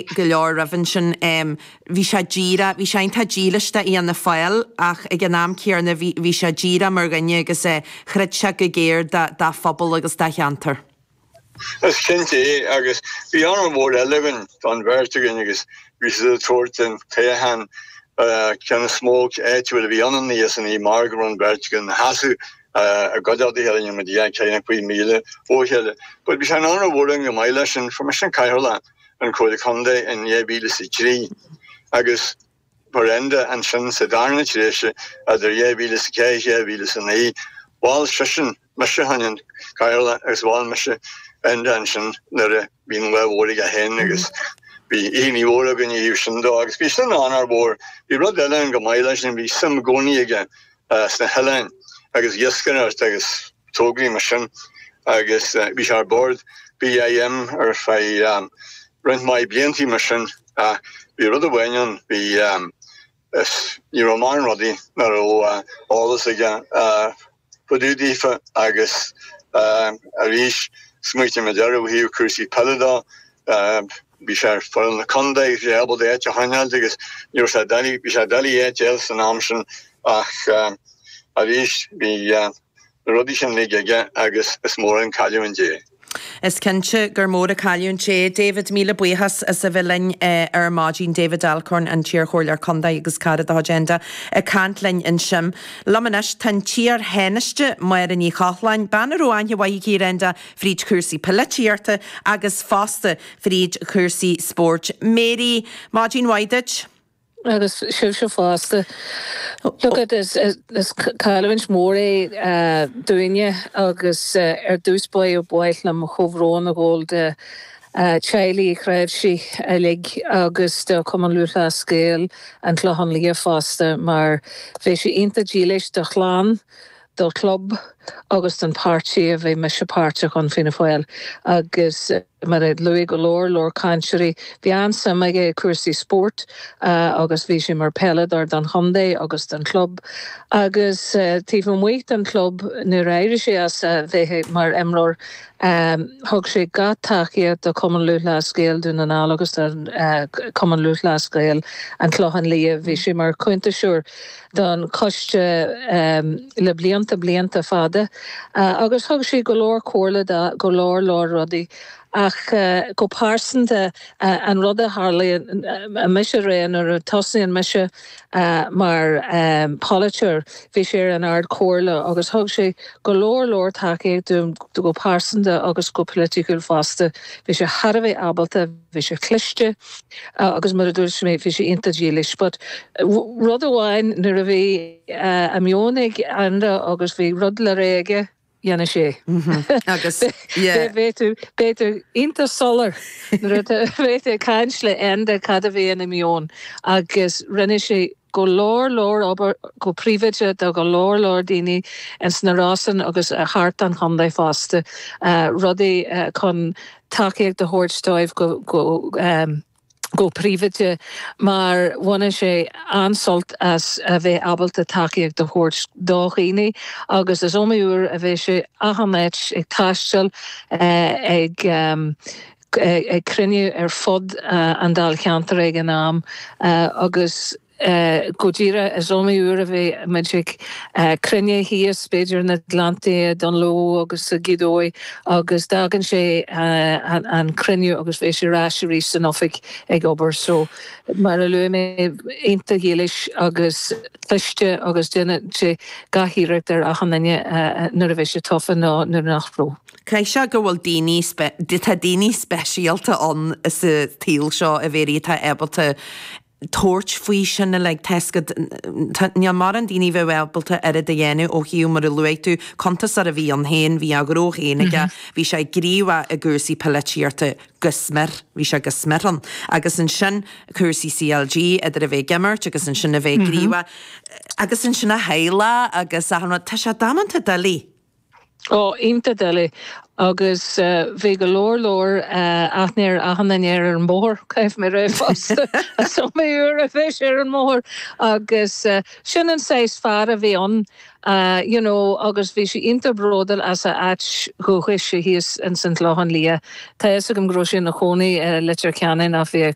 go leor roimhe ansin. Bhí sé díreach, bhí sé iontach dílis d'Fhianna Fáil ach ag an am céarna bhí, bhí sé díreach mar dhuine agus chreid sé go géar dá, dá phobal agus dá cheantar. Is cinnte é agus bhí onóir mhór eile againn, don bheirt againn agus bhí siad ag tabhairt an toghchán ceann is mó áitiúil a bhí ann í is an í mar go raibh an bheirt againn ina sheasamh i gcuideachta a chéile, rinne muid ina gcónaí faoi mhíle ó chéile. But bhí sé onóir mhór againn go maith leis sin, mar sin Cathaoirleach. an Comhairle Contae in 2003 agus mar Enda ansin sa darna tréimhse idir 2004 is 2009. Mhol seisean mise fá choinne an Chathaoirleach agus mhol mise Enda ansin nuair a bhí an lá mór aige féin agus bhí onóir mhór againn a dhéanamh sin dó agus bhí sin onóir mhór. Bhí rud eile ann go maith leis sin bhí suim i gcónaí aige sna hoileáin agus iascaireacht agus tograí mar sin agus bhí sé ar bord BIM ar feadh roinnt mhaith bliantaí mar sin ach bhí rud amháin ann, bhí is ní raibh morán rudaí nach raibh eolas aige fá dtaobh daofa agus arís smaoitigh muid air ó thaobh cúrsaí peile de, Bhí sé ar fhoireann an chontae agus é ábalta áit a choinneáilt agus ní raibh sé doiligh, bhí sé doiligh áit a fháil san am sin ach arís bhí na rudaí sin uilig aige agus is mór an cailliúint é. Is cinnte gur mór an cailliúint é. David, míle buíochas as a bheith linn ar maidin. David Alcorn, an t-iar Chomhairleoir Contae agus cara de chuid Enda, ag caint linn ansin. Liom anois tá an t-iar Thánaiste, Máire Ní Chochláin, bean a raibh aithne mhaith aici ar Enda, fríd chúrsaí poilitíochta agus fosta fríd chúrsaí spóirt. Mary, Maidin mhaith duit. Agus sibhse fosta. Look it, is cailliúint mhór é dúinne agus ar dtús ba mhaith liom comhbhrón a ghabháil do theaghlach Uí Chnáimhsí uilig agus do Chumann Lúthchleas Gael, An Clochán Liath fosta mar bhí sé iontach dílis do chlann do chlub agus don páirtí a bhí mise páirteach ann, Fianna Fáil, agus mar a luaigh go leor leor cainteoirí, bhí an-suim aige i cúrsaí spóirt agus bhí sé mar peileadóir don chontae agus don chlub agus taobh amuigh den chlub nuair a éirigh sé as a bheith mar imreoir thug sé gach tacaíocht do Chumann Lúthchleas Gael Dún na nGall agus do Chumann Lúthchleas Gael an Chlocháin Liath, bhí sé mar chuntasóir. don Choiste le blianta, blianta fada agus thug sé go leor comhairle do go leor, leor rudaí ach go pearsanta an rud a tharlaíonn mise a rá nuair a thosnaigh mise mar pholaiteoir, bhí sé ar an Ard Chomhairle agus thug sé go leor, leor tacaíocht dom go pearsanta agus go politicúil fosta. Bhí sé thar a bheith ábalta. bhí sé cliste agus mar a dúirt mé bhí sé iontach dílis but rud amháin nuair a bhí a meon ag Enda agus bhí rud le rá aige dhéanadh sé mm-hmm agus yeah bhí tú bhí tú iontach soiléir nuair a bhí tú ag caint le Enda cad a bhí ina mheon agus rinne sé go leor leor obair go príobháideach do go leor leor daoine ins na Rosann agus thart an chontae fosta rudaí chun tacaíocht a thabhairt dóibh go príobháideach, mar bhaineadh sé an-sult as a bheith ábalta tacaíocht a thabhairt do dhaoine, agus is iomaí uair a bheadh sé achan áit ag taisteal, ag cruinniú ar fud an dáilcheantair ag an am, agus Go díreach, is iomaí uair a bheadh muid ag cruinniú thíos, b'fhéidir na Gleanntaí, Dungloe agus Gaoth Dobhair, agus d'fhágadh sé an cruinniú agus bheadh sé ar ais arís san oifig ag obair. So, mar a luaigh mé, iontach dílis agus cliste agus dhéanadh sé gach iarracht ar achan duine nuair a bhí sé tofa nó nuair nach raibh. Caithfidh sé go bhfuil daoine, tá daoine speisialta ann sa tsaol seo a Mhéirí atá ábalta tabhairt faoi sin uilig, tá fhios agat. Níl mórán daoine a bheadh ábalta oiread a dhéanamh ó thaobh, mar a luaigh tú, cuntasóir a bhí ann féin. Bhí a ghnó féin aige. Bhí sé gníomhach i gcúrsaí poilitíochta go smior. Bhí sé go smior ann. Agus ansin cúrsaí CLG, idir a bheith ag imirt agus ansin a bheith gníomhach. Agus ansin a theaghlach agus achan rud. Tá sé damanta doiligh. Oh, iontach doiligh. Agus bhí go leor leor aithne ar achan duine ar an mbóthar. Caithfidh mé a rá fosta is iomaí uair a bhí sé ar an mbóthar. Agus sin an saghas fear a bhí ann, you know, agus bhí sé iontach bróduil as a áit dhúchais thíos ins an Chlochán Liath. Tá fhios agam go raibh sé ina chónaí i Leitir Ceanainn ach bhí a.